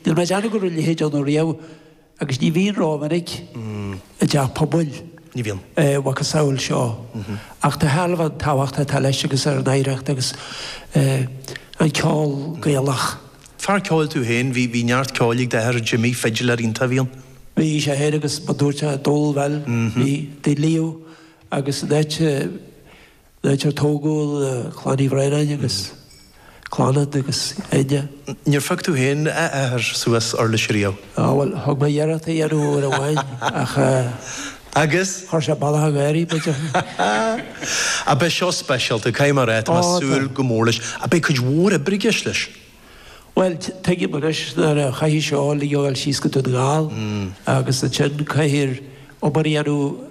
Níl mé ag déanamh go mbíonn a leithéid ann riamh, agus ní bhíonn rómhinic i dteach pobail, a mhacasamhail seo, ach de thairbhe an tábhachta atá leis agus an oidhreacht agus an ceol Gaelach. Fear ceoil tú féin, bhí neart ceoil ag d'athair Jimmy, fidiléir iontach a bhí ann. Bhí sé féin agus mar dúirt sé, dól, bhuel, bhí, they live agus an áit, Áit ar tógadh Clann Uí Bhraonáin agus Clannad agus Enya. Níor phioc tú féin, a Athair, suas uirlis riamh? Á, bhuel, thug mé iarracht a dhéanamh uair amháin ach. Agus? Chuir sé balaith ag éirí, b'fhéidir. Á, beidh seo speisialta, caithfidh mé a rá. Tá mé ag súil go mór leis. Á, beidh cuid mhór oibre i gceist leis. Bhuel, tuigim anois nuair a chaithfidh seo a thabhairt síos go Dún na nGall agus ansin caithfear obair a dhéanamh.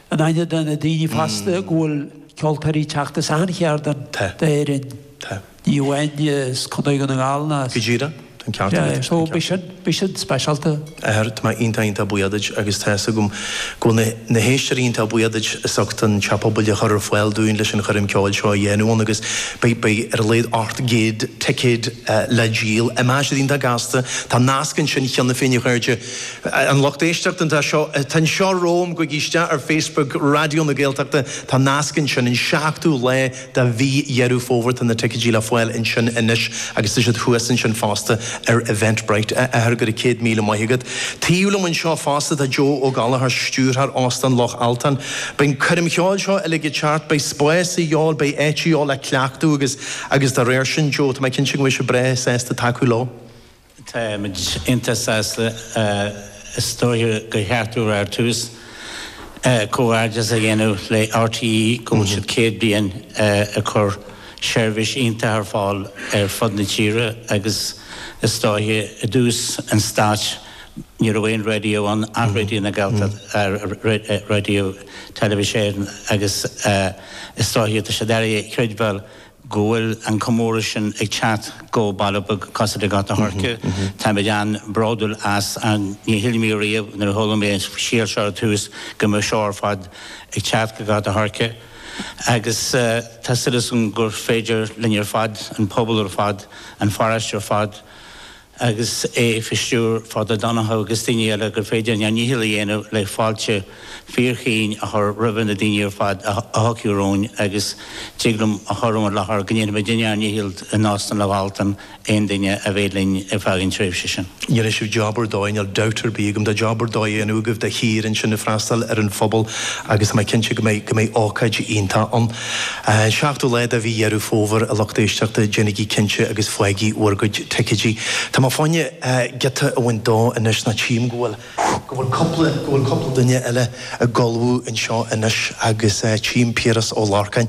In aithne do na daoine fasta go bhfuil ceoltóirí ag teacht as achan chearn d'Éirinn, ní amháin as Contae Dhún na nGall ná as. Go díreach, tá an ceart agat. So b'shin an speisialta. Athair, tá mé iontach iontach buíoch duit agus tá a fhios agam go bhfuil na héisteoirí iontach buíoch duit as ucht an teach pobail a chur ar fáil dúinn leis an choirm cheoil seo a dhéanamh ann agus beidh, beidh ar a laghad ocht gcéad ticéad le díol imeoidh siad iontach gasta. Tá nasc ansin cheana féin a chairde. An lucht éisteachta atá, atá anseo romham, gabhaigí isteach ar Facebook Raidió na Gaeltachta, tá nasc ansin, an seachtú lá de mhí Dheireadh Fómhair, tá na ticéidí le fáil ansin anois agus tá siad thuas ansin fosta ar Eventbrite. A Athair, go raibh céad míle maith agat. Taobh liom anseo fosta tá Joe Ó Gallchóir, Stiúrthóir Óstán Loch Altáin. Beidh an choirm cheoil seo uilig thart, beidh spás a dhíobháil, beidh áit a dhíobháil le cleachtadh agus agus dá réir sin, Joe, tá mé cinnte go mbeidh sibh breá sásta tacú leo. Tá muid iontach sásta, is dóiche go gcaithfear ar dtús, comhghairdeas a dhéanamh le RTÉ go bhfuil siad 100 bliain ag cur seirbhís iontach ar fáil ar fud na tíre agus is dóiche i dtús an stáit ní raibh aon raidió ann ach Raidió na Gaeltachta, Raidió Teilifís Éireann agus is dóiche tá sé deacair a chreidbheáil go bhfuil an comóradh sin ag teacht go baile beag cosúil le Gort an Choirce. Táimid an-bhródúil as. Ní shíl mé riamh nuair a chuala mé an scéala seo ar dtús go mbeadh seo ar fad ag teacht go Gort an Choirce agus tá súil agam gur féidir linn ar fad, an pobal ar fad, an pharóiste ar fad, agus é faoi stiúir Father Donncha agus daoine eile, gur féidir linn ár ndícheall a dhéanamh le fáilte fíorchaoin a chur roimhe na daoine ar fad a thiocfaidh romhainn agus tig liom a chur i bhur láthair go ndéanfaimidne ár ndícheall in Óstán Loch Altáin aon duine a bheidh linn ar feadh an tréimhse sin. Déanfaidh sibh job ar dóigh, níl dabht ar bith agam, tá job ar dóigh á dhéanamh agaibh de shíor ansin ag freastal ar an phobal agus tá mé cinnte go mbeidh, go mbeidh ócáid iontach ann. An seachtú lá de mhí Dheireadh Fómhair, a lucht éisteachta, déanaigí cinnte agus faigí bhur gcuid ticéidí. Tá mé fá choinne giota a bhaint dó anois ná tchím go bhfuil, go bhfuil cúpla, go bhfuil cúpla duine eile ag ullmhú anseo anois agus tchím Piaras Ó Lorcáin.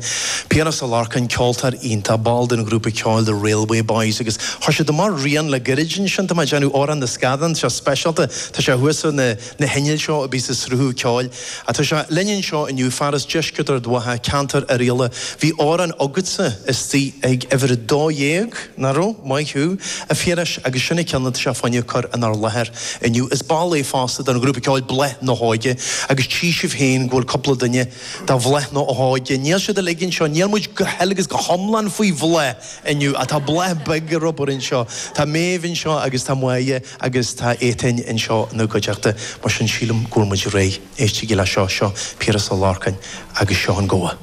Piaras Ó Lorcáin, ceoltóir iontach, ball den ghrúpa ceoil The Railway Boys agus chuir siad amach rian le gairid ansin, tá mé ag déanamh Amhrán na Scadán, seod speisialta, tá sé thuas ar na, na hinnill seo a bíos ag sruthú ceoil. Tá sé linn anseo inniu fear as deisceart Ard Mhacha, ceantar Oirialla. Bhí amhrán agatsa istigh ag uimhir a dó dhéag, nach raibh? Maith thú, a Phiarais, agus sin an ceann atá sé fá choinne a chur inár láthair inniu. Is ball é fosta den ghrúpa ceoil Bláth na hÓige agus tchí sibh féin go bhfuil cúpla duine de Bhláth na hÓige, níl siad uilig anseo, níl muid go huile agus go hiomlán faoi bhláth inniu ach tá bláth beag ar obair anseo. Tá Méabh anseo agus tá Máire. agus tá Étáin anseo ina gcuideachta, mar sin sílim go bhfuil muid réidh. Éistigí leis seo, seo Piaras Ó Lorcáin agus seo an gabha.